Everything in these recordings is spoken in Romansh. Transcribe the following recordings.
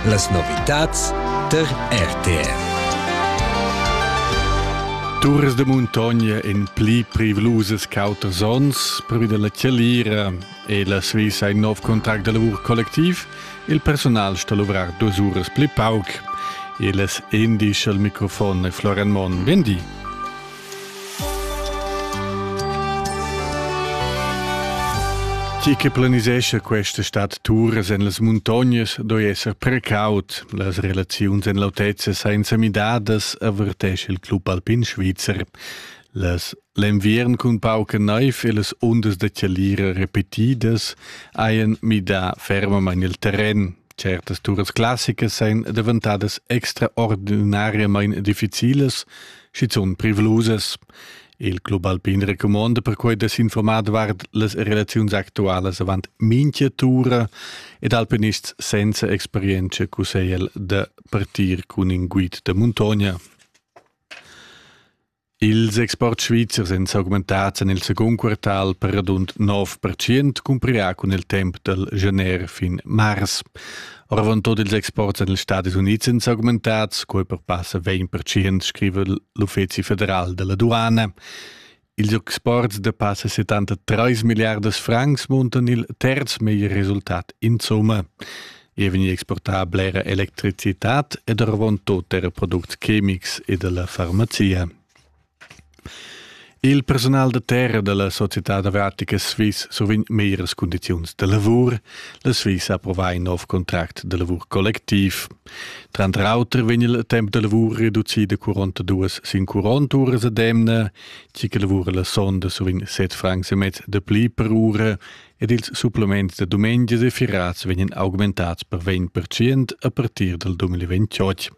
Las novitads tar RTR. Turas de muntogna in pli privlusas cautas ons, prüda la Chalira e la Svizra in nov contract de lavur collectiv, il personal sta luvrar duas uras pli pauc. Il es indice al microfon e Florian Mon. Vendi. Chi che planisescha questa stad turas en las muntognas doi esser precaut. Las relaziuns en l'autezza senza midadas avertesce il club alpin svizzer. Las L'enviern cun pauca naiv e las ondas da chalira repetidas hajan midà fermamain il terren. Certas turas classicas èn daventadas extraordinariamain difficilas, Schizun privlusas. Il club alpin recumonda perquai da s'informar davart las relaziuns actualas avant mincha tura ed alpinists senza experienza cussegl da partir cun in guid da muntogna. Ils exports svizzers èn s'augmentads en il secund quartal per radund 9% cumprirà cun il temp dal gener fin mars. Oravant tot ils exports en ils Stadis Unids sind augmentads, quei perpassa 20% scriva l'Uffeci federal della Durana. Ils exports de passa 73 miliardas francs muntan il terz meglier resultat in summa. E vegnir exportar blera electricitat ed oravant tot era products chemics e della farmazia. Il personal da terra dalla societad avratica Swiss survegn meglieras cundiziuns da lavur. La Swiss ha approvà in nov contract da lavur collectiv. Tranter auter vegn il temp da lavur reducì da 42 sin 40 uras ad emna. Tgi che lavura la sonda survegn 7 francs e mezz da pli per ura ed ils supplements da dumengia e firats vegnan augmentads per 20% a partir dal 2028.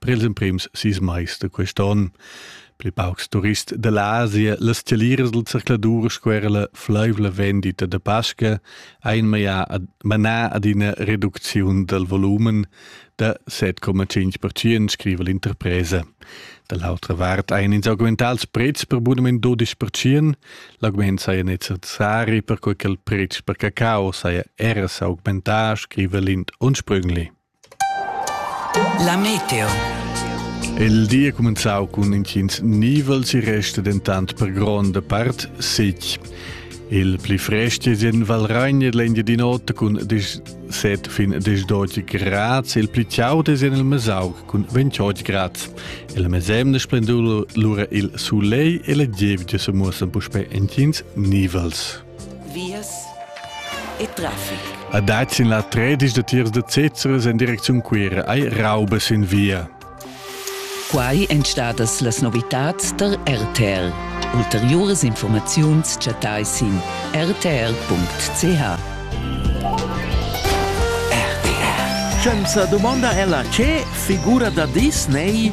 Per ils emprims sis mais da quest onn pli paucs turists da l'Asia, las taliras del circladur sco era la fleivla vendita da Pasca ein manà ad ina reducziun del volumen da 7,5%, scriva l'interpresa. Dall'altra vart ein ins augmentat ils prezs per bunament 12%, l'augment saja necessari per quei che il prezz per cacao saja era s'augmentar, scriva Lind Unsprüngli. La meteo. Il di è cumenzau cun intgins nivels, e resta dentant per gronda part sitg. Il pli frest è en Valragna l'India di notte cun 17 fin 18 grad, il pli chaud è en il Mesauc cun 28 grad. Il mesemne splendur lura il soleil e la gievgia se muossen puspè entgins nivels. vias e traffic. A Dazin la tredisch da tiers da Cezeres en direcziun Cuira ai raubes in via. Quai èn stadas las novitads tar RTL. Ulteriuras informaziuns chattai sin rtl.ch. Scienza domanda ella che figura da Disney,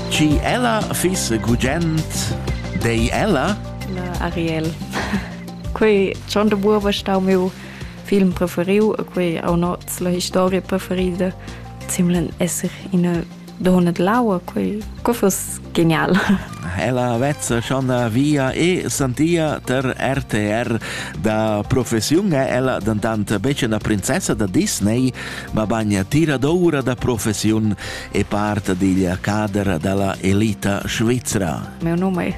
ci ella fiss gugent, dei ella? Na, Ariel. quei schon de buoba stau meu film preferiu e quei au noz la historia preferida simlen esser in donna laua quei co fus genial Ella vezza schon via e santia ter RTR da professiun è ella dantant becce una princessa da Disney, ma bagna tira d'oura da professiun e part digl cader dalla elita svizzera. Meu nome